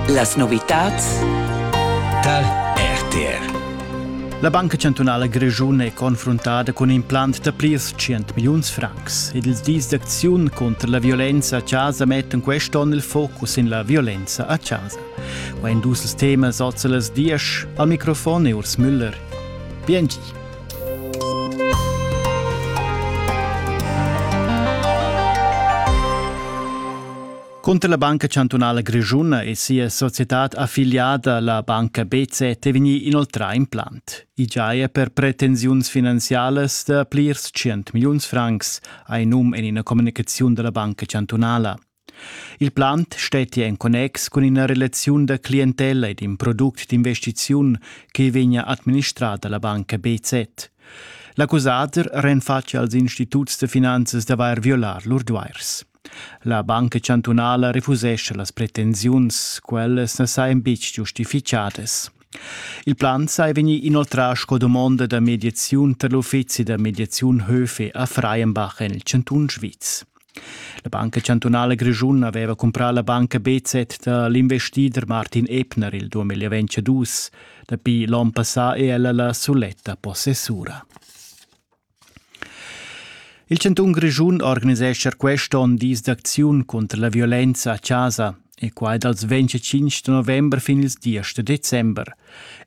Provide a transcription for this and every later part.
Las novitads tar RTR. La Banca chantunala grischuna è confruntada cun implant da plirs 100 milliuns francs ed ils dis d'acziun contra la violenza a casa mettan quest'onn il focus en la violenza a casa. Qua en dus ils temas oz las diesch al microfon è Urs Müller. Biengi. Cunter la Banca chantunala grischuna e sia societad affiliada, la banca BZ, è vegnì inoltrà implant. I giaja per pretensiuns finanzialas da plirs tschient milliuns francs, ha num en ina communicaziun da la Banca chantunala. Il plant stettia en connex cun ina relaziun da clientella ed in product d'investiziun che vegnia administrada la banca BZ. L'accusader renfatschia als instituts da finanzas d'avair violà lur duairs. La banca chantunala refusescha las pretensiuns, quellas na sajan betg giustifichadas. Il plan sai vegnir inoltrà sco dumonda da mediaziun tar l'uffizi da mediaziun Höfe a Freienbach en il chantun Sviz. La Banca chantunala grischuna aveva cumprà la banca BZ da l'investider Martin Ebner il 2022. Dapi l'onn passà è ella la suletta possessura. Il chantun Grischun organisescha quest onn dis d'acziun cunter la violenza a chasa e quai dals 25 november fin ils 10 da december.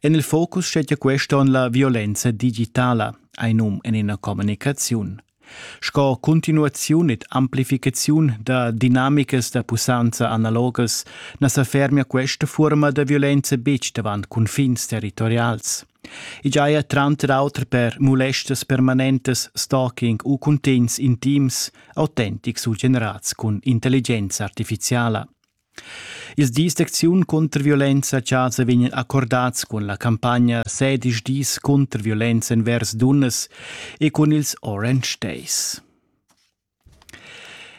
En il focus stetia quest onn la violenza digitala, ein num en ina communicaziun. Sco continuaziun ed amplificaziun da dinamicas da pussanza analogas na sa fermia questa furma da violenza betg davant cunfins territorials. I giaja tranter auter per mulestas permanentas, stalking u cuntegns intims autentics u generads cun intelligenza artificiala. Ils dis d'acziun contr violenza a chasa vegnan accordads cun la campagna Sedisch dis contr violenza envers dunnas e cun ils Orange Days.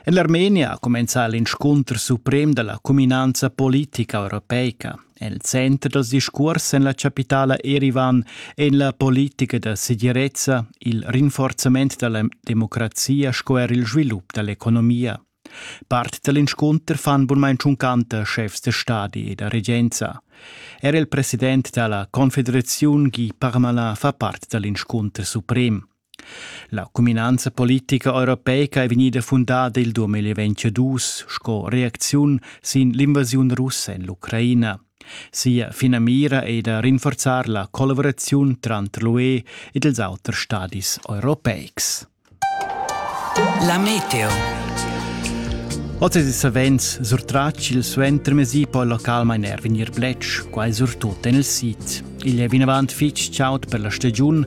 En l'Armenia ha cumenzà l'inscunter suprem da la cuminanza politica europeica. El center dals discurs en la chapitala Erivan è en la politica da segirezza il rinforzament da la democrazia sco er il svilup da l'economia. Part da l'inscunter fan bunmain tschuncanter schefs da stadi e da regenza. Er il president da la Confederaziun Guy Parmalin fa part da l'inscunter suprem. La cuminanza politica europeica è vegnida fundada il 2022 sco reacziun sin l'invasiun russa en l'Ucraina. Sia finamira è da rinforzar la collaboraziun tranter l'UE ed ils auters stadis europeics. La meteo. Oz è savens surtratg il suentermesi poi localmain er vegnir bletsch, quai surtut en il sid. Igl è vinavant fitg chaud per la stagiun,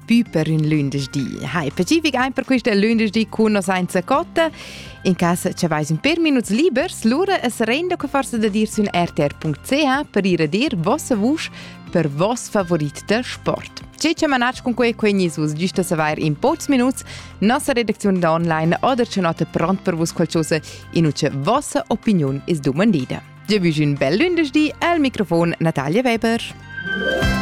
Pü per ün lündeschdi. Hai, specific ein per questa lündeschdi con nos senza cotta. In casa ci vais un per minuts libers, lura es renda che forse da dir sün rtr.ch per ir a dir vossa vusch per vos favorit da sport. Ce ci manage con quei quegni sus giusta saver in pocs minuts nossa redakzione da online oder c'è nota pronto per vos qualcosa in uce vossa opinion is domandida. Già un bel lündeschdi al microfon Natalia Weber.